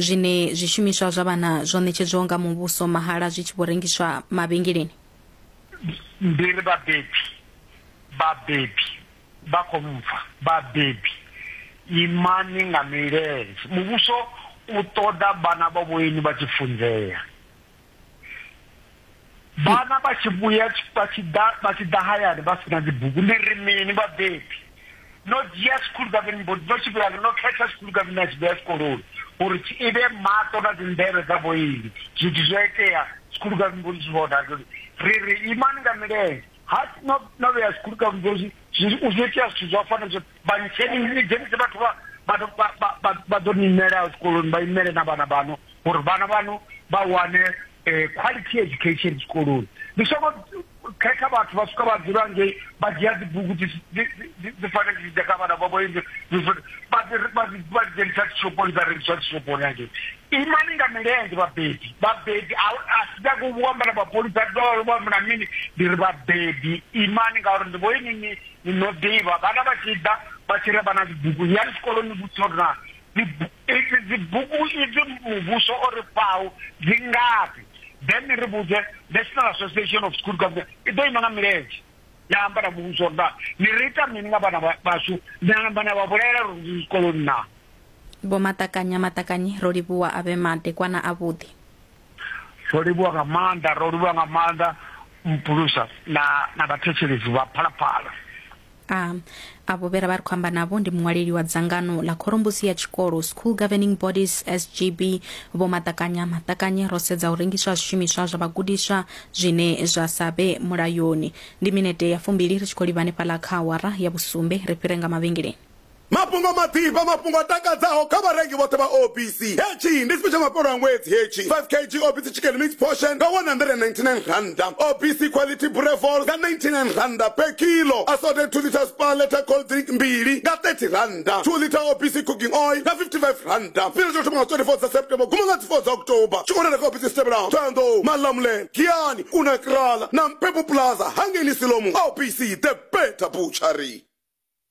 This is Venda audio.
Zwine zwishumiswa zwa vhana zwo ṋetshedzwaho nga muvhuso mahala zwi tshi vho rengiswa mavhengeleni. Ndi ri vhabebi, vhabebi vha khou mpfa, vhabebi imani nga milenzhe, muvhuso u ṱoḓa vhana vha vhoinwi vha tshi funzea. vhana vha tshi vhuya vha tshi ḓa vha tshi ḓa hayani vha sina dzibugu ndi ri mini vhabebi no dzhia school government board no tshi vhuya no khetha school government a tshi vhuya tshikoloni uri tshi ivhe maṱo na dzinḓevhe dza vhoili zwithu zwo itea school government board zwi vhona uri ri ri imani nga milenzhe ha no no vhea school government board zwi zwi itea zwithu zwa fana zwo Vha ntsheni ni dzhenise vhathu vha vhathu vha vha vha vha ḓo ni imela zwikoloni vha imele na vhana vhaṋu uri vhana vhaṋu vha wane quality education zwikoloni ni songo khetha vhathu vha swika vha dzula ngei vha dzhia dzi bugu dzi dzi dzi dzi fanela dzi ḓa kha vhana vhavho ende dzi vha dzi vha dzi vha dzi dzhenisa dzi shophoni dza rengiswa dzi shophoni hangei imani nga milenzhe vhabebi vhabebi a a si nyagi u amba na mapholisa a ḓo vha amba na mini ndi ri vhabebi imani ngauri ndi vho inwi ni Ni no ḓivha, vhana vha tshi ḓa vha tshi ri vha na dzibugu, yani tshikoloni ni vhudzise uri naa dzibu, idzi dzibugu idzi muvhuso o ri fhaho dzi ngafhi, then ni ri vhudze National Association of School Governors i ḓo ima nga milenzhe ya amba na muvhuso uri naa ni ri ita mini nga vhana vhashu, ni a namba na vha vhulaela uri ndi zwikoloni naa. Vho Maṱakanya Maṱakanyi, Rolivhuwa a vhe madekwana avhuḓi. Ro livhuwa nga maanḓa, ro livhuwa nga maanḓa mpulusa na na vhathetshelesi vha phalaphala. A, avho vhe ra vha ri khou amba navho ndi muṅwaleli wa dzangano ḽa khorombusi ya tshikolo School Governing Bodies SGB Vho Maṱakanya Maṱakanye ro sedza u rengiswa ha zwishumiswa zwa vhagudiswa zwine zwa sa vhe mulayoni. Ndi minete ya fumbili ri tshi khou livha hanefhaḽa kha awara ya vhusumbe ri fhire nga mavhengeleni. Mafhungo maḓifha, mafhungo a takadzaho kha vharengi vhoṱhe vha OBC. Hetshi ndi tshifhe tsha mafhelo a ṅwedzi hetshi. 5 kg OBC Chicken Mix Portion nga R199, OBC Quality Boerewors nga R99 per kilo, Assorted 2 litres Spar Letter Cold Drink mbili nga R30, 2 litre OBC Cooking Oil nga R55. Tshifhinga tsha u thoma nga 24 dza September u guma nga dzi 4 dza October. Tshi khou wanala kha ofisi dzi tevhelaho, Thohoyandou, Malamulele, Giyani, Kuna Kraal na Mpepu Plaza hangei Nisilomu. OBC, The Better Butchery.